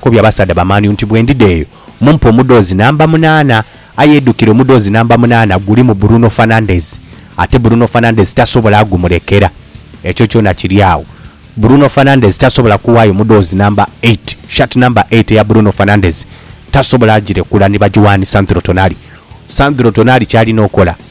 Kobya abasaadha ba Man U nti bwe ndidha eyo mumpe omudhoozi namba munaana. Aye edukire omudhoozi namba munaana gulimu Bruno Fernandes ate Bruno Fernandes tasobola gumulekera. Ekyo kyona kiri agho. Bruno Fernandes tasobola kuwaayo mudhoozi namba eight, shirt namba eight eya Bruno Fernandes tasobola girekura ni bagiwaa ni Sandro Tonali. Sandro Tonali ky'alina okola.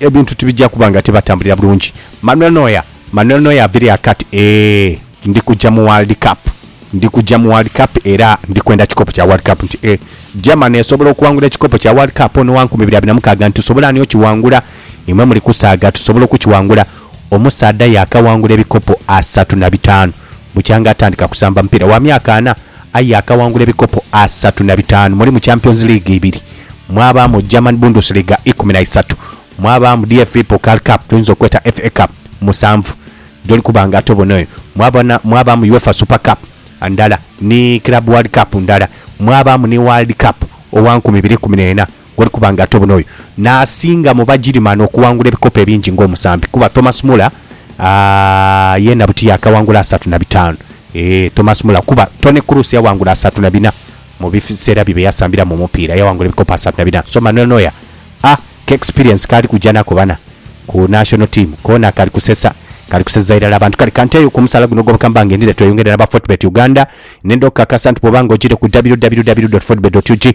Ebintu tibija kuba nga tibatambulira bulungi. Manuel Neuer Manuel Neuer aviire akati Eehh ndi kuja mu World Cup Ndi kuja mu World Cup era ndi kwenda kikopo kya World Cup nti e Germany esobola okuwangula ekikopo kya World Cup ono wa nkumi ibiri abiri na mukaaga nti tusobola ani okiwangula imwe muli kusaaga tusobola okukiwangula Omusaadha yaakawangula ebikopo asatu na bitaanu bukyanga atandika kusamba mupiira wa myaka ana Aye akaghangula ebikopo asatu na bitaanu mulimu Champions League ibiri, mwabaamu German Bundesliga ikumi na isatu, mwabaamu DFB Pokal Cup gyoyinza okweta FA Cup musanvu gyoli kuba nga ate obona eyo mwabona mwabaamu Uefa Super Cup ndala ni Club World Cup ndala mwabaamu ni World Cup owa nkumi ibiri ikumi n'ena. Goli kuba nga ate buno oyo n'asinga mu Bagirimani okuwangula ebikopo ebingi ng'omusambi kuba Thomas Muller yeena buti yaakawangula asatu na bitaanu. Eeh, Thomas Muller kuba Toni Kroos yawangula asatu na bina mu biseera bye bye yasambiramu omupiira, yawangula ebikopo asatu na bina. So Manuel Neuer a k'experience k'ali kuja nako bana ku national team koona kali kusesa, kali kuseza irala abantu. Kale ka nteeyo ku musaala guno ogw'obukama bange ndidhe tweyongere n'aba Fortebet Uganda. Nindha okukakasa nti bw'oba nga ogiire ku www.fortebet.ug